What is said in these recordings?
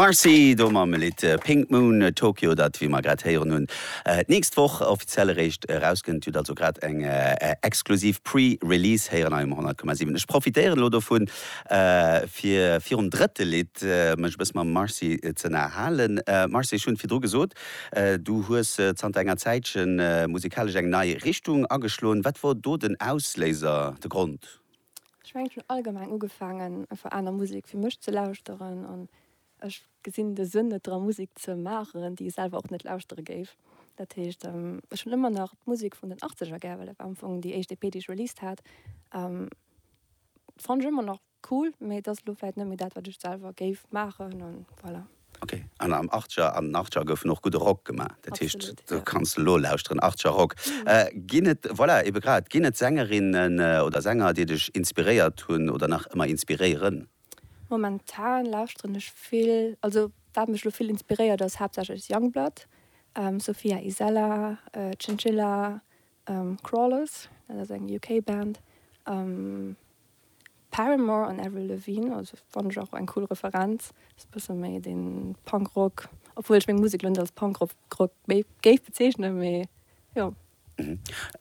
Marcy do mam Lidd äh, Pink Moon äh, Tokyo, dat wéi mer grad héieren hunn, äh, d'nächst Woch offiziell eréischt erauskënnt. Dir hutt also grad eng äh, exklusiv Pre-Release héieren hei um 100,7. Ech profitéieren elo dovun, äh, fir virum drëtte Lidd äh, mech e bësse mam Marcy ze ënnerhalen. Äh, Marcy, ech hunn et virdru gesot, Du hues zanter enger Zäitchen musikalesch eng nei Richtung ageschloen. Wat wor do den Ausléiser, de Grond? Ech mengen, ech hunn allgemeng ugefaangen, einfach aner Musek fir mech ze lauschteren. An ech gesinn de Sënn net dra Musek ze maachen, déi ech selwer och net lauschtere géif. Dat heescht, ech hunn ëmmer nach d'Musek vun den Achtzeger gär, well dat war am Fong déi éischt EP, déi ech released hat. D'fann ech ëmmer nach Cool, mee et ass elo vläit net méi dat wat ech selwer géif maachen an voilà. Ok, an am Archer an den Archer goufen och gudde Rock gemaach, dat heescht do kanns de elo lauschteren, Archer Rock. Ginn et, voilà, ebe grad, ginn et Sängerinnen oder Sänger déi dech inspiréiert hunn oder nach ëmmer inspiréieren? Momentan lauschteren ech vill, also wat mech elo vill inspiréiert ass haaptsächlech Youngblood, Sophia Isela, Chinchilla, Crawlers, dat ass eng UK Band. Paramore an Avril Lavigne, also fannen ech och eng cool Referenz, ass bësse méi den Punk Rock, obwuel ech meng Musek lo net als Punk Rock géif bezeechnen, mee jo.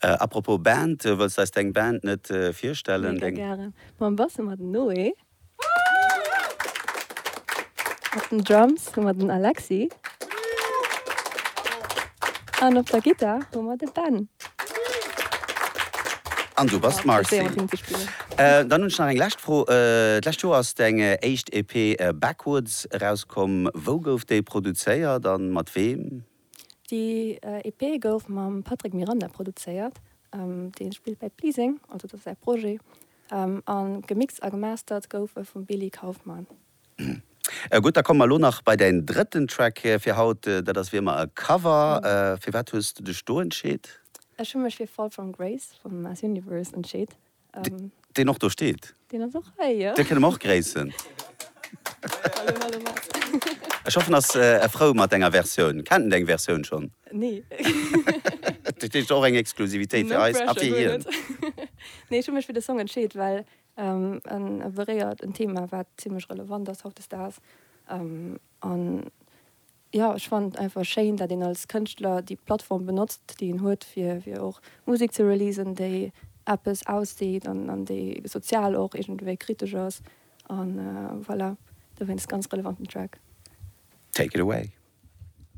Apropos Band, wëlls eis deng Band net virstellen? Mega gären, mam Bass ëmmer den Noé. Op den Drums hu mer den Alexi. An op der Gittar hu mer de Ben. An du bass d'Marcy. Dann hunn ech nach eng lescht Fro. D'lescht Joer ass deng éischt EP Backwards erauskomm. Wou gouf déi produzéiert a mat weem? Déi EP gouf mam Patrick Miranda produzéiert, dee spillt bei Pleasing, also dat ass säi Projet, a gemixt a gemastert gouf e vum Billy Kaufmann. Gutt, da komme mer elo nach bei däin drëtten Track fir haut, dat ass wéi ëmmer e Cover. Firwat hues de dech do entscheet? Ech hu mech fir Fall From Grace vum Mass Universe entscheet. Deen och do steet. Deen ass och hei, jo. Dee kënne mer och gréissen. Hallo, hallo, Marc. Ech hoffen, ass e frou mat denger Versioun. Kennt en deng Versioun schonn? Nee. Dat heescht och eng Exklusivitéit fir eis a fir hien. No pressure, guer net. Nee, ech hu mech fir de Song entscheet, well en beréiert en Thema, wat zimlech relevant ass hautdesdaags. An. Jo, ech fannen et einfach schéin, dat een als Kënschtler déi Plattform benotzt, déi een huet, fir fir och Musek ze releasen, déi eppes ausseet an an déi sozial och iergendwéi kritesch ass. An voilà, dowéinst ganz relevanten Track. Take it away.